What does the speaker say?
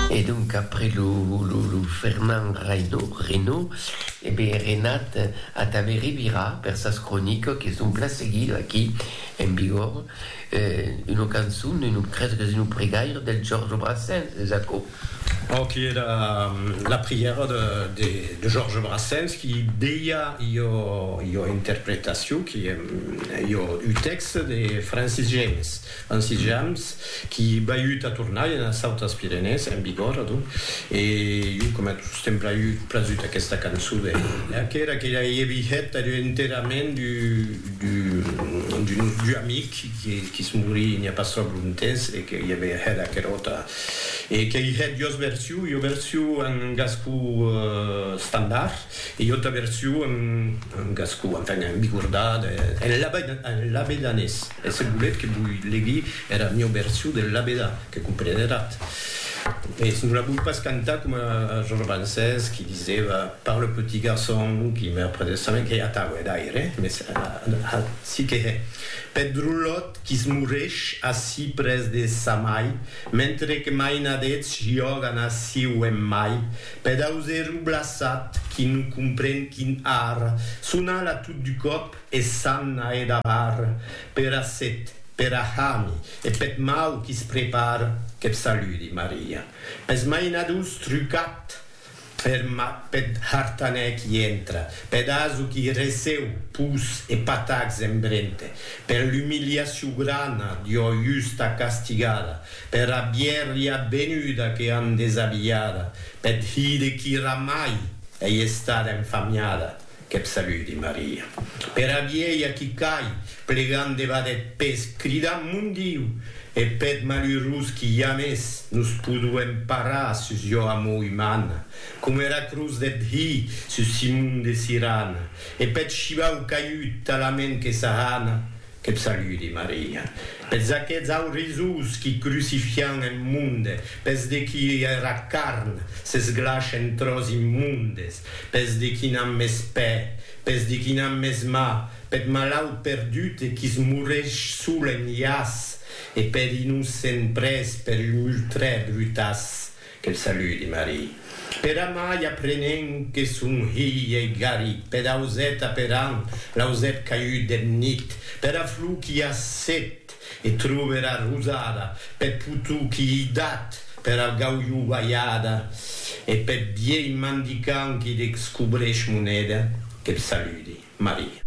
E donc après lo Fernand Reynaud, e ben Renat Atave Ribirà per sas cronicas que son plan seguidas aquí en Bigòrre, una cançon, creso qu'es una pregaira del Georges Brassens, es aquò? Pro qui era la prièra de Georges Brassens qui deia ua interpretacion, qui ua un tèxte de Francis James. En sitjams qui baiut a tornar enas autas Pirenèes, en vigor, adonc, e jo coma tot sostemp braiut prasut aquesta cançon de Lea que era que ei vihet er enterrament d'un nostre amic qui se morí n'i a pas tròp lontemps e que i avè hèt aqueròta e qu'ei hèt duas versions, ua version en gascon estandard e ua auta version en gascon, enfin, en bigordà, en labedanés. E se volètz que voi legui era mieu version del labedà, que compreneratz. Mès non la voi pas cantar coma Georges Brancès qui disèva par le petit garçon qui meurt près de sa main, qu'ei atau, hè, d'aire, mès ací que hè, peth drolòt qui se mourèsh ací près de sa mai, mentre que mainadets jògan ací o en mai, peth auserou blaçat qui non compren quin ar, son ala tot du còp, E s'an a e davar pera set, pera hami e peth mau qui's prepar, qu'eth saludi, Maria. Pes mainadors trucat er mat peth hartanèr qui entra, peth aso qui receu pus e patacs en brente, per l'umiliacion grana d'ua justa castigada, pera bièrria benuda que an desabilhada, peth hide qui ramai ei estada enfamiada, Qu'eb saludi, Maria. Pera vielha qui cai, plegant debat eth pes, cridant, Mon Diu! E peth malurós qui jamès nos poduem parar sus jo amor umana, coma era cruz deth Hi sus Simon de Sirana, e peth shivau caiut talament que s'ahana, Qu'eb saludi, Maria. Pes aqueths aurisós qui crucifian en monde, pes de qui era carn s'esglash en tròç immondes, Pes de qui n'an mès pè, pes de qui n'an mès mà, peth malaut perdut e qui's moresh sol en iàs, e per innocent près per un ultrè brutàs, que'l saludi Marie. Per amai aprenent que son hilh ei garit peth auset aperant l'ausèt caiut deth nit, pera flor qu'i a set, E trube era rosada peth potou qui ei dat per al gaulhou balhada e peth vielh mandicant qui dexcobrèsh moneda. Que b' saludi, Maria.